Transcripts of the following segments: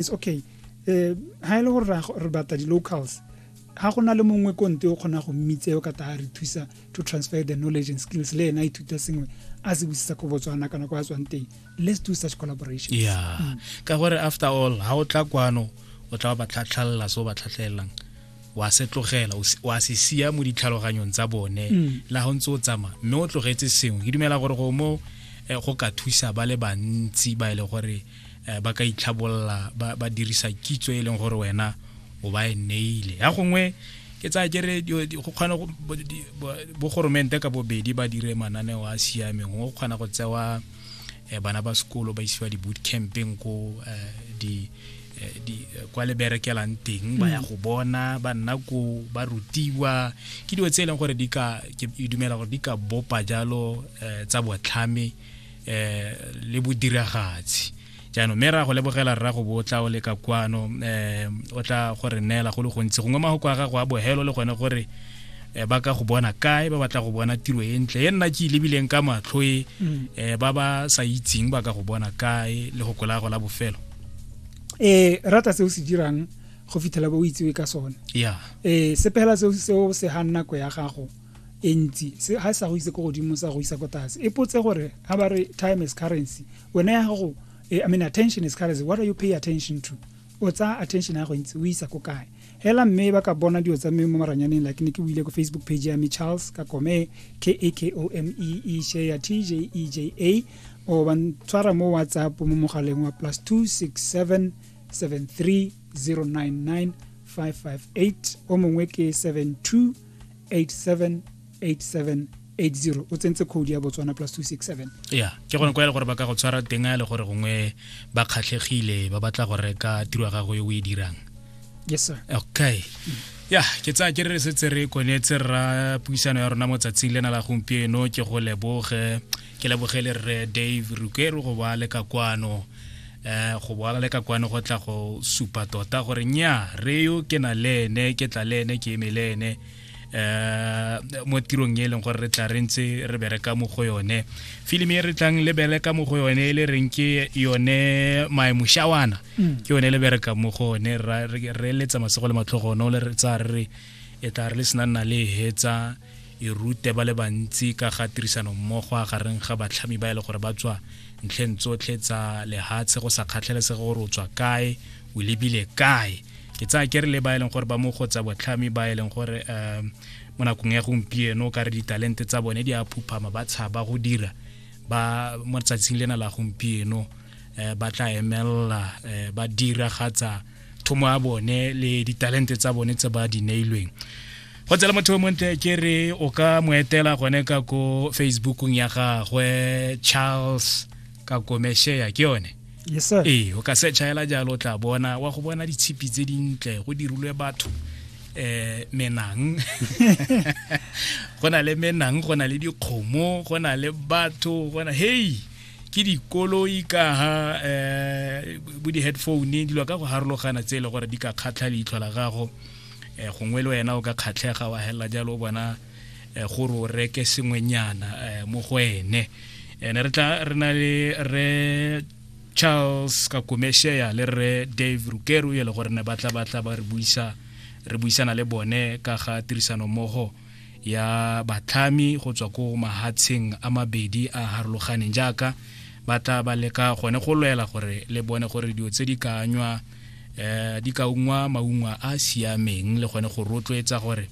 it's okay eh ha ile e gore re batla di locals ha go na le mongwe konte o kgona go mmitse o ka ta re thusa to transfer the knowledge and skills le ena ithuta sengwe a se busisa ko botswana kana kwa tswang teng let's do such collaboration yeah mm. ka gore after all ha o tla kwano o tla ba tlhatlhalla so ba tlhatlhelelang wa se tlogela wa se sia mo ditlhaloganyong tsa bone mm. la go ntse o tsamaya mme o tlogetse sengwe ke dumela gore go mo eh, go ka thusa ba le bantsi ba e le gore eh, ba ka itlhabolola ba dirisa kitso e leng gore wena o ba e neile ya gongwe ke tsaya kere go kgona bogoromente ka bobedi ba dire mananeo a siameng go kgona go tsewa eh, bana ba sekolo ba isiwa di-boot campeng ko eh, di eh, di kwa le berekelang teng ba ya mm. go bona ba nna ko ba rutiwa ke dilo tse e leng gore di ka ke dumela gore di ka bopa jalo tsa botlhame eh le bodiragatsi jaanong mme ra go lebogela rra go bo o tla o leka kwano um o tla go re neela go le gontsi gongwe magoko a gago a bohelo le gone gore um ba ka go bona kae ba batla go bona tiro e ntle e nna ke e lebileng ka matlho e um ba ba sa itseng ba ka go bona kae le go kolago la bofelo um rata se o se dirang go fitlhela ba o itsewe ka sone ya um sepela seo se ganna nako ya gago e ntsi se ga sa go itse ko godimo sa go isa ko tlase e potse gore ga ba re time is currency wena ya gago eh, i mean attention is currency what are you pay attention to o tsaya attention ya go ntse o isa ko kae hela mme ba ka bona dilo tsa mme mo maranyaneng like ne ke buile ko facebook page ya me charles ka kome k a k o m e e she ya t j e j a o ba ntshwara mo whatsapp mo mogaleng wa plus 267 73099 558 o mongwe ke 72 878780 o tsentse code ya botswana plus 267 ya ke gone kwa e le gore ba ka go tshwara teng a e le gore gongwe ba kgatlhegile ba batla go reka tiro ya gago e o e dirang yes sir okay mm. ya ke tsaya ke re setse re konetse rra puisano ya rona mo tsatsing lena la gompieno ke go leboge ke lebogele rre dave rukero go ba le ka kwano um go boala le ka kwane go tla go supa tota gore nya re yo ke na le ene ke tla le ene ke eme le ene um mo tirong e leng gore re tla re ntse re bereka mo go yone filimi e re tlang le bereka mo go yone e le reng ke yone maemoshawana mm. ke yone le bereka mo go one re letsa masego le matlhogono le re tsa re re e tla re le senang na le hetsa e rute ba le bantsi ka ga tirisanommogo a gareng ga batlhami ba e le gore ba tswa ntlheng tsotlhe tsa lehatshe go sa kgatlhalesege gore o tswa kae o lebile kae ke tsaya ke re le ba e leng gore ba mo go tsa botlhami ba e leng gore um mo nakong ya gompieno ka re ditalente tsa bone di a phuphama ba tshaba go dira ba mo tsatsing lena la gompieno um ba tla emelela um ba diragatsa thomo ya bone le ditalente tsa bone tse ba di neilweng go tsela motho o montle ke re o ka mo etela gone ka ko facebookong ya gagwe charles ka komeshea ke yone yes, ee o ka searcha hela jalo o tla bona wa go bona ditshipi tse dintle go dirilwe batho eh menang go na le menang go na le dikgomo go na le batho go na hey ke dikoloi ka ha um bo di-headphone dilo ka go harologana tse e le gore di ka kgatlha leitlho la gago um gongwe le wena o ka kgatlhega wa helela jalo o bona um gore o reke sengwenyana um mo go ene ene re tla re na le re charles kakomeshea le re dave rukeru e le gore ne batla batla ba re buisa re buisana le bone ka ga tirisanommogo ya batlhami go tswa ko mahatsheng a mabedi a harologaneng jaaka ba tla ba leka gone go lwela gore le bone gore dilo tse di ka anywa um di ka ungwa maungwa a siameng le gone go rotloetsa gore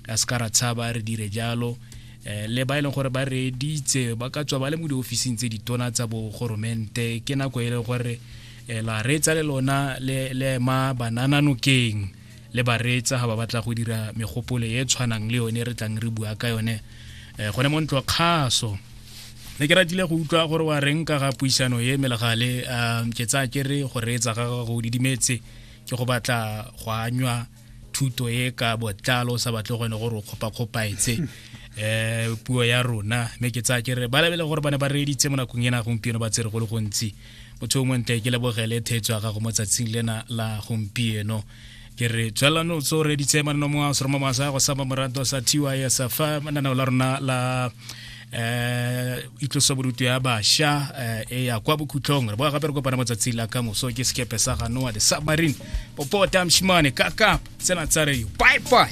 a se ka ra tshaba re dire jalo um le ba e leng gore ba reeditse ba ka tswa ba le mo diofising tse ditona tsa bogoromente ke nako e leng gore um la reetsa le lona le ema banananokeng le bareetsa ga ba batla go dira megopolo e tshwanang le yone re tlang re bua ka yone um gone mo ntlo kgaso ne ke ratile go utlwa gore wa reng ka ga puisano e melegale um ke tsaya ke re go reetsa ga gago didimetse ke go batla go anywa thuto e ka botlalo sa batle gone gore o kgopakgopaetse eh puo ya rona me ke tsa ke re ba lebele gore bana ba reeditse mo nakong ena gompieno ba tsere go le gontsi motho o montle ke lebogele thetso ya gago mo tsatsing lena la gompieno ke re tswelano tso re ditse manno mo a seroma masa go sama morato sa thiwa ya sa fa manana la rona la eh itlosa borutu ya basha eh, e ya kwa bokhutlong re boa gape re kopana matsatsi la ka moso ke sekepe sa ga noa the submarine popota mshimane kakap tsena tsa re bye bye